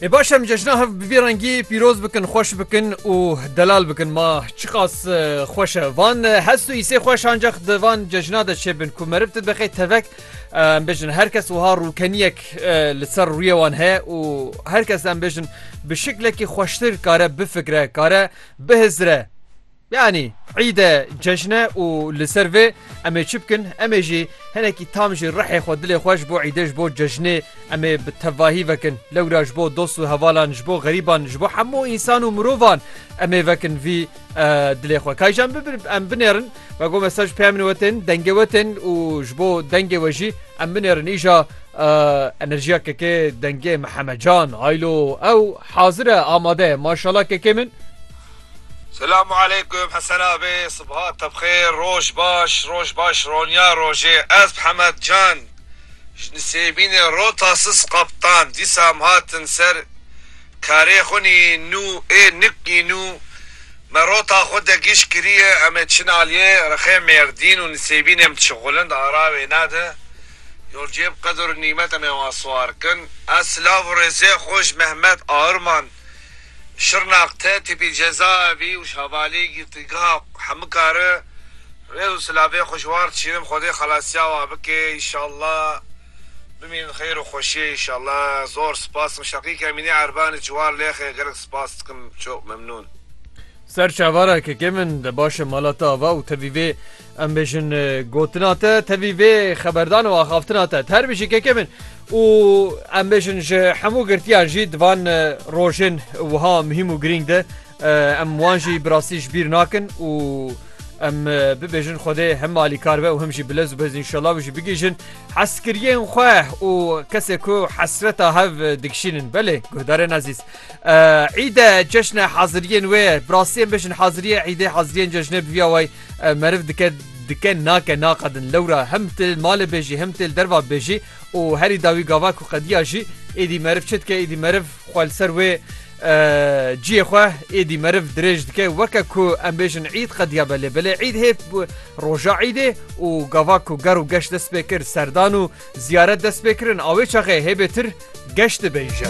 ê baş em cejna hev bi vî rengî pîroz bikin xweş bikin û delal bikin ma çiqas xweş e van hest û îsê xweş ancax di van cejna de çêbin ku merib tu bixê tevek em bêjin her kes wiha rûkeniyek li ser rûyê wan heye û her kes em bêjin bi şiklekî xweştir kare bifikre kare bihizire Yanî îd e, cejn e û li ser vê em ê çi bikin? Em ê jî hinekî tam ji rihê xwe, dilê xwe ji bo îdê, ji bo cejnê em ê bi tevahî vekin. Lewra ji bo dost û hevalan, ji bo xerîban, ji bo hemû însan û mirovan em ê vekin vî dilê xwe. Kaycan em binêrin ve got me saj peya min we tên, dengê we tên û ji bo dengê we jî em binêrin îja enerjiya kekê dengê Mihemed Can. Haylo ew hazir e, amade ye. Maşala kekê min. Selamu aleykum Hesen Abe, Sibha te bixêr, Roj baş, Roj baş Ronya rojê ez Mihemed Can ji Nisêbînê Rota Sis Kaptan dîsam hatin ser karê xwinî nû ê niknî nû me rota xwe de gîş kirîye em ê çin alîyê rexê Mêrdîn û Nisêbînê em diçin xwilind ara wêne de yol cê bi qedir û nîmet em ê wan siwar kin ez silav û rêzê xwe ji Mehmet Aurman Şirnaq, Tetîbî, Cezaevî û Şavalî, Girtîgeha Hemikari, rêz û silavê xwe ji wan re dişînim Xwedê xelasiya wan bike înşallah bimînin di xeyr û xweşiyê înşallah zor spas dikim Şaqîk Emînî Erbanî ji wan lêxê gelek spas dikim çok memnûn. Ser çavara keke min de baş e mala te ava û tevî vê Em bêjin gotina te tevî vê xeberdan û axaftina te her bijî keke min û em bêjin ji hemû girtiyan jî di van rojên wiha muhîm û girîng de em wan jî bi rastî ji bîr nakin û em bibêjin Xwedê hem malîkar be û hem jî bilez û bez înşallah û jî bigihîjin heskiriyên xwe û kesê ku hesreta hev dikişînin belê guhdarên ezîz îde ceşne haziriyên wê bi rastiyên bêjin haziriye îdê haziriyên cejnê biviya way Ev meriv dike dike nake naqedin lewra hem tu li malê bêjî hem tu li derva bêjî û herî dawî gava ku qediya jî êdî meriv çi dike êdî meriv xwe li ser wê ciyê xwe êdî meriv dirêj dike weke ku em bêjin îd qediya be lê belê îd hêv roja îdê û gava ku ger û geş dest pê kir serdan û ziyaret dest pê kirin awê çaxê hêbê tir geş dibêje.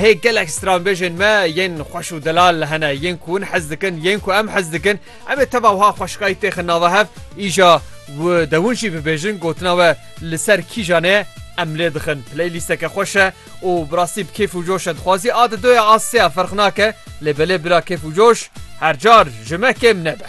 Hê gelek stranbêjên me yên xweş û delal hene yên ku hûn hez dikin yên ku em hez dikin em ê teva wiha xweşikayî têxin nava hev îja û dewin jî bibêjin gotina we li ser kîjan ê em lê dixin playlîsteke xweş e û bi rastî bi kêf û coş e dixwazî a di doya a seya ferq nake lê belê bila kêf û coş her car ji me kêm nebe.